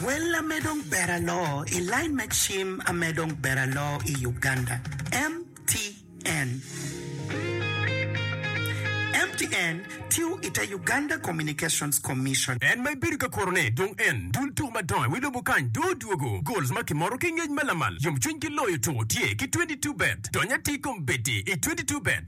Wel ame dong ber aloo i line me cim ame dong ber aloo i Uganda, MTN. MTN tiyo i te Uganda Communications Commission. En ma ibedo ka kurone dong en dul tuku madongo wi lobo kany dong odwogo. Goals ma kimoro ki ngec ma lamal, yomcwiny ki loyo tuku tye ki twenty two bet. Dony atir kom bedi i twenty two bet.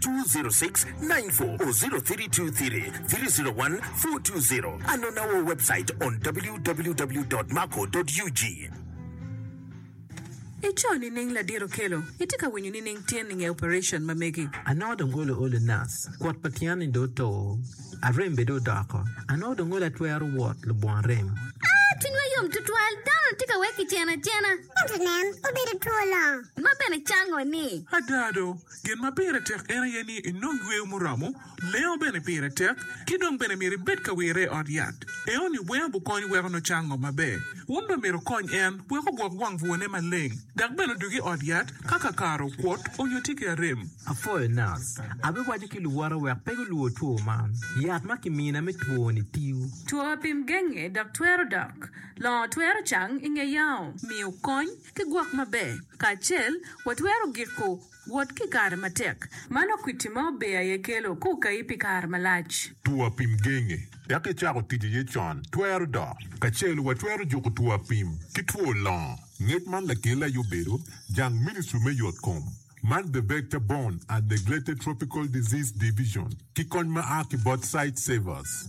206-94 or 0323-301-420 and on our website on www.mako.ug. I co nining ladit okelo? I tye ka winyo nining tyen i nge operation ma megi? Anongo dong olo olo nas, kwot pa tyen ni dong oto, arem bene dong odoko. Anongo dong olo atwero wot lubongo rem. Aa, cwinywa yom tutwal, dano-ni tye ka wek kiceno acena. Ento nen, obedo two longo. Ma bene cango ni. Ada do, Gin ma pire tek en aye ni inong yweyo muromo, lengo bene pire tek, ki dong bene myero ibed ka wirre i ot yat. Enoni weng gukony weko nucang ngo maber. Wun bene myero wukonye en wek ogwok wang bwone maleng, dok bene odug i ot yat ka kakare okwot onyo tye ki arem. Apwoyo nac. Abiwaco ki luwote wek pe gulwor two man. Yat ma kimina me twoni tiyo. Two apim genge dok twero dok. Longo twero cang i nge yao. Miyo kony. Ki gwok maber kacel, watwero giko wot ki kare matek ma nongo kwiti ma ober aye kelo ka okayi pi kare malac. Two apim genge dok icako tic iye con twero dok. Kacel, watwero juko two apim ki two longo. Ngec man lakele aye obedo jang Ministry me Yotkom man The Vector Borne and Neglected Tropical Disease Division ki kony ma a ki bot Sightsavers.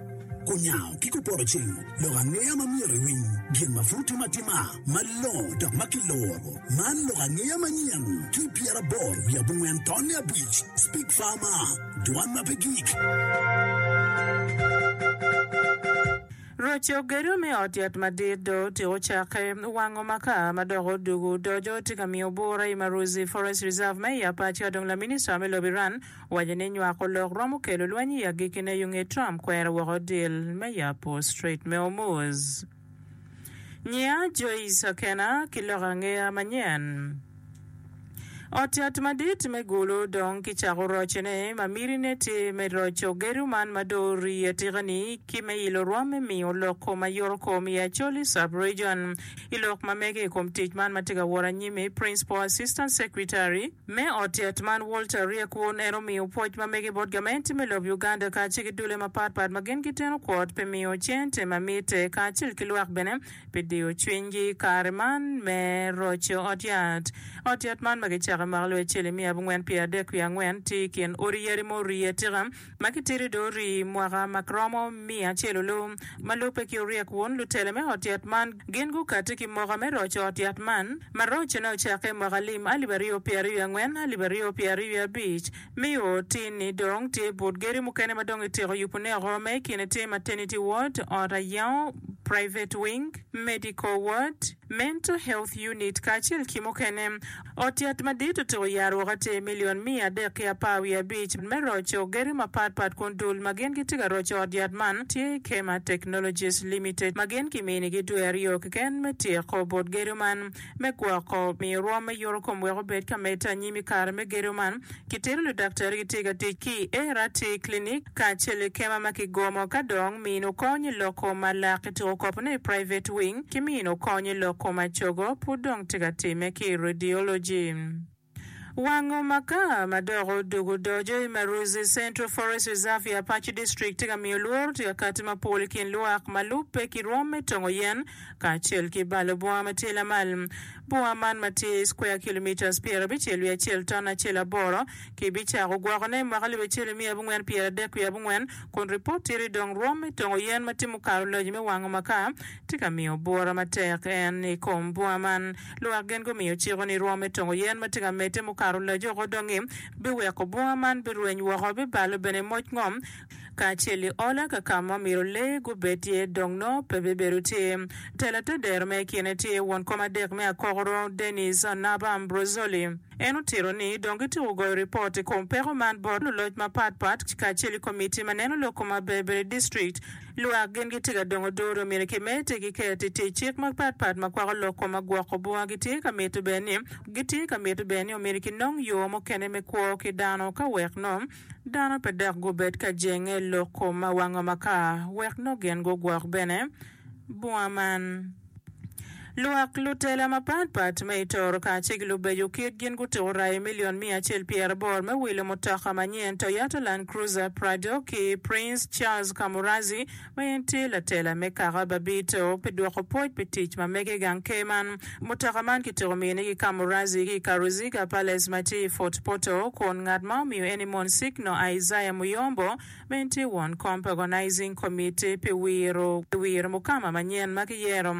Kunyango ki kupotoceng lok angeya ma myero iwiny gin ma pud timo atima malongo dok ma kiloro. Man lok angeya manyen ki pyeraboro wiye abongwen tonne abic, Speak Farmer, Dwan ma pe gik. Roco gedo me ot yat madit dong otyeko cakke. Wango makar ma dok odwogo odoco tye ka miyo bura i Maruzi Forest Reserve ma i Apac ka dong laminista me lobo Iran Waco ni nywako lok romo kelo lweny i agikine yo nge Trump kwero woko dil me yabo Strait me Hormuz. Nyia Joyce Akena ki lok angeya manyen. Ot yat madit me Gulu dong ki cako roce ne ma miti ne tye me roco gedo man ma dong orii atika ni ki me ilo rwom me miyo lok kom ayoro kom i Acholi Sub Region. I lok ma mege i kom tic man ma tye ka wot anyimi Principal Assistant Secretary Me ot yat man Walter ryek wun en omiyo pwoc ma mege bot gamente me lob Uganda kacel ki dule mapat pat ma gin giteno kwot pi miyo cente ma mitte kacel ki lwak bene pi diyo cwinygi i kare man me roco ot yat. Ot yat man ma gicako i mwaka alip acel nimiya abongwen pye adek wiye angwen tye i kin odi yadi ma orye atika ma kitidi dong orii mwaka ma romo miya acel oloo ma lubbe ki oryek wun lutele me ot yat man gin gukati ki moka me roco ot yat man ma rocone ocakke i mwaka lim alip aryo pye aryo wiye angwen alip aryo pye aryo wiye abic mi o tin ni dong tye but geri mukene ma dong ityeko yubu ne oko ma ikine tye maternity ward ot ayango private wing medical ward Mental Health Unit, kacel ki mukene. Ot yat madit otyeko yaro woko atir milion miya adek ki apar wiye abic me roco gedo mapat pat kun dul ma gin gitye ka roco ot yat man tye Kema Technologies Limited ma gin kiminigi dwe aryo keken me tyeko bot gedo man me gwoko miyo rwom me yuto kom wek obed ka medde anyim i kare me gedo man Kitito ludaktari gitye ka tic ki i ART clinic kacel ki kema ma kigomo ka dong mino kony i lok kom ma lak ki tuko kop ne i private wing ki mino kony i lok kom acogo pud dong tye ka time ki i radiology. Wango maka ma dok odug odoco i Maruzi Central Forest Reserve i Apac District tye ka miyo lworo tye ka kati mapol i kin lwak ma lubbe ki rwom me tongo yen kacel ki balo bunga ma tye lamal. Bunga man ma tye square kilometres pyera abicel wiye acel ton acel aboro, ki bicako gwokone i mwaka alip acel i miya abongwen pyera adek wiye abongwen, kun ripot tye ni dong rwom me tongo yen ma timo karo loji me wango maka tye ka miyo bura matek. En i kom bunga man, lwak gin gumiyo ciko ni rwom me tongo yen ma tye ka medde mukato loji oko dongi biweko bunga man birweny woko, bibalo bene moc ngom, kacel i ola ka ka ma omyero lee gubed iye dong nongo pe bibedo tye. Tela te dero me ikine tye won kom adek me akokoro, Dennis Anaba Ambrosoli. En otito ni dong gityeko goyo ripot i kom peko man bot luloc mapat pat kacel i komitti ma neno lok kom maber ber i district. Lwak gin gitye ka dongo odoo dong myero kimed te giket i tic cik mapat pat ma kwako lok kom ma gwoko bunga gitye ka mito bene ni gitye ka mito bene ni omyero kinong yo mukene me kwo ki dano ka wek nongo Dano pe dok gubed ka jenge lok kom ma wango makar wek nongo gin gugwok bene bunga man. Lwak lutela mapat pat me i Toro kacel ki lubeco kit gin gutuko rai milion miya acel pyera aboro me wilo mutoka manyen Toyota Land Cruiser Prado ki Prince Charles Kamuradzi ma en tye latela me kaka Babito pi dwoko pwoc pi tic ma mege i gang ker man. Mutoka man kityeko miyone ki Kamurazzi ki i Karuziga Palace ma tye i Fort Portal kun ngat ma omiyo en-ni Monsigno Isaiah Muyombo ma en tye won kom pa Organizing Committee pi wiro pi wiro mukama manyen ma kiyero.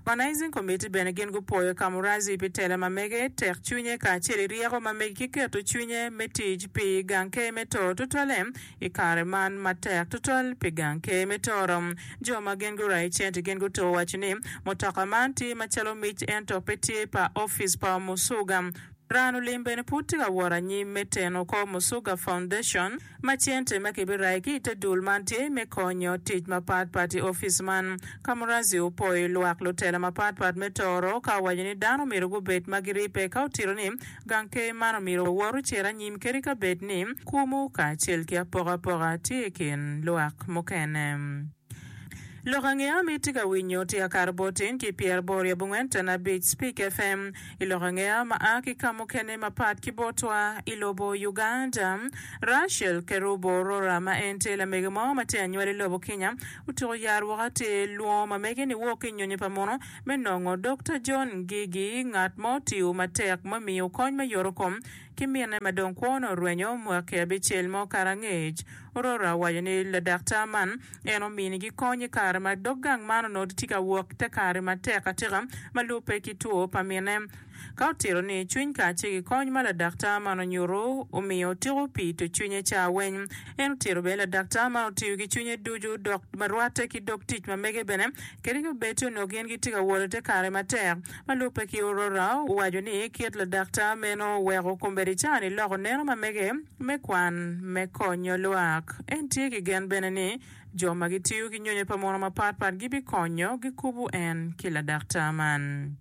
Organizing Committee bene gin gupwoyo Kamurazzi pi tela ma mege, tek cwinye kacel i ryeko ma mege ki keto cwinye me tic pi gang ker me too tutwalle I kare man matek tutwal pi gang ker me toro, jo ma gin gurayo cente gin guto owaco ni, Mutoka man tye macalo mic ento pe tye pa ofice pa Omusuga. Ran Olim bene pud tye ka wot anyim me teno kor Musuga Foundation ma cente ma kibirayo ki i te dul man tye me konyo tic mapat pat i ofice man. Kamurazi opwoyo lwak lutela mapat pat me toro ka owaco ni dano omyero gubed ma giribbe ka otito ni Gang ker man omyero wawor ocer anyim kadi ka bed ni kumu kacel ki apokapoka tye i kin lwak mukene. Lok ange am itye ka winyo tye akato bot tin ki pyeraboro i abongwen tana abic Speak FM i lok ange am a ki ka mukene mapat ki botwa i lobo Uganda. Rachel Kerubo Orora ma en tye lamege mo ma tye anywali lobo Kenya otuko yat woko atir lwongo mamege ni woo ki nyonyo pa muno Me nongo Dokta John Ngigi, ngat ma otiyo matek me miyo kony me yotokom ki minne ma dong kwone orwenyo mwaki abicel mo kare angec, ororo awaco ni ladaktar man en ominigi kony i kare ma dog gang man onongo tye ka wok i te kare matek atika ma lubbe ki two pa minne. Ka otito ni cwiny kace ki kony ma ladaktar man onyutu omiyo otiko pi to cwinye caa weny, en otito bene ladaktar man otiyo ki cwinye ducu dok ma rwate ki dog tic ma mege bene kadi ki obed ci onongo gin gitye ka wot ite kare matek. Ma lubbe ki Aurora owaco ni kit ladaktar meno oweko kombeddi caa ni loko neno ma mege me kwan me konyo lwak. En tye ki gen bene ni jo ma gitiyo ki nyonyo pa mono mapat pat gibikonyo gikubu en ki ladaktar man.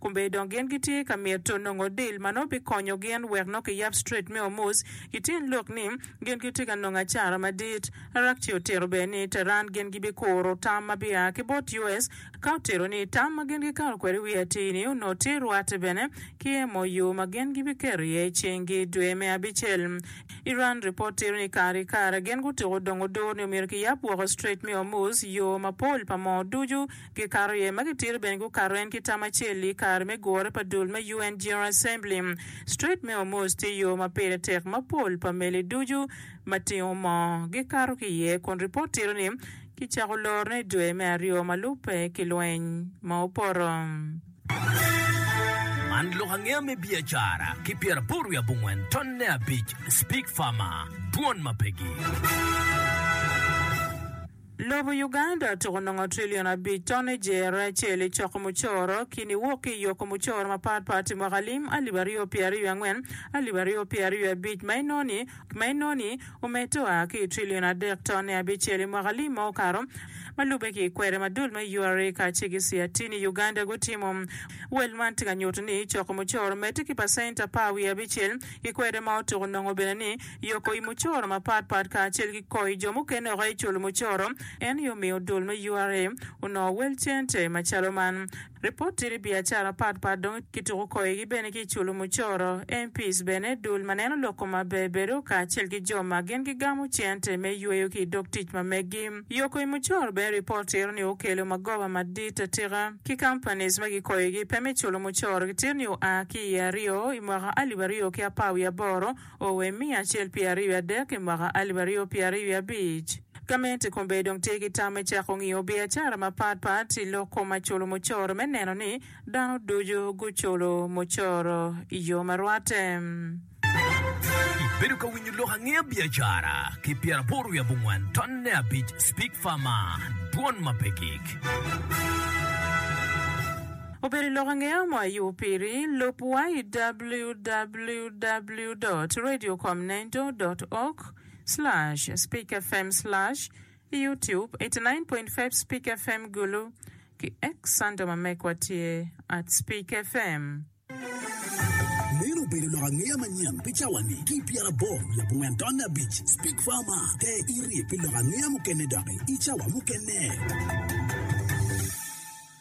Kombe dong gin gitye ka mito nongo dil ma nongo bikonyo gin wek nongo kiyab Strait me Hormuz. Kityen lok ni, gin gitye ka nongo acara madit. Araghchi otito bene ni Tehran gin gibikuro tam ma bia ki bot US, ka otito ni tam ma gin gikato kwede i wi atir-ni onongo tye rwatte bene ki MOU ma gin gibiketo iye cinggi i dwe me abicel. Iran ripot tito ni kare ki kare gin gutuko dongo dur ni omyero kiyab woko Strait me Hormuz yo mapol pa moo ducu Gikato iye ma gitito bene gukato en ki tam acel-li i kare me gure pa dul me UN General Assembly. Strait me Hormuz tye yo ma pire tek ma pol pa meli ducu ma tingo moo gikato ki iye, kun ripot tito ni kicako lorone i dwe me aryo ma lubbe ki lweny ma opoto. Man lok angeya me biacara ki pyeraboro wiye abongwen tonne abic, Speak Farmer, Dwon ma pegi. Lobo Uganda tuko nongo trillion abic ton i jere acel i coko mucoro ki niwok ki i yoko mucoro mapat pat i mwaka lim alip aryo pye aryo angwen, alip aryo pye aryo abic ma inoni ma inoni omedde oa ki i trillion adek ton i abicel i mwaka lim ma okato ma lube ki i kwede ma dul me URA kacel ki CRT-ni i Uganda gutimo. Wel man tye ka nyuto ni coko mucoro omedde ki pacent apar wiye abicel ki kwede ma otuko nongo bene ni yoko i mucoro mapat pat kacel ki koyo jo mukene woko aye culo mucoro, en aye omiyo dul me ura onongo wel cente macalo man. Ripot tye ni biacara mapat pat dong kituko koyogi bene ki i culo mucoro. MPs bene, dul ma neno lok koma ber bedo, kacel ki jo ma gin gigamo cente me yweyo ki i dog tic ma meggi. Yoko i mucoro bene ripot tito ni okelo magoba madit atika ki companies ma gikoyogi pe me culo mucoro gitito ni oa ki i aryo i mwaka alip aryo ki apar wiye aboro, Owe i miya acel pi aryo i adek i mwaka alip aryo pye aryo i abic. Gamente kombeddi dong tye ki tam me cako ngiyo biacara mapat pat i lok kom maculu mucoro me neno ni dano ducu guculu mucoro i yo ma rwatte. Ibedo ka winyo lok angeya biacara ki pyer aboro wiye abongwan tonne abic Speak Far Man, Dwon ma pe gik. Obedo i lok ange mo a yubo piri? Lub wa i www dot radio com nendo dot org slash speak fm slash i youtube eighty nine point five speak fm gulu ki X under ma mekwa tye at speak fm. Meno obedo lok angeya manyen pi cawa-ni ki pyera abor labongo entonne abic. Speak Farma, te iri pi lok angeya mukene doki i cawa mukene.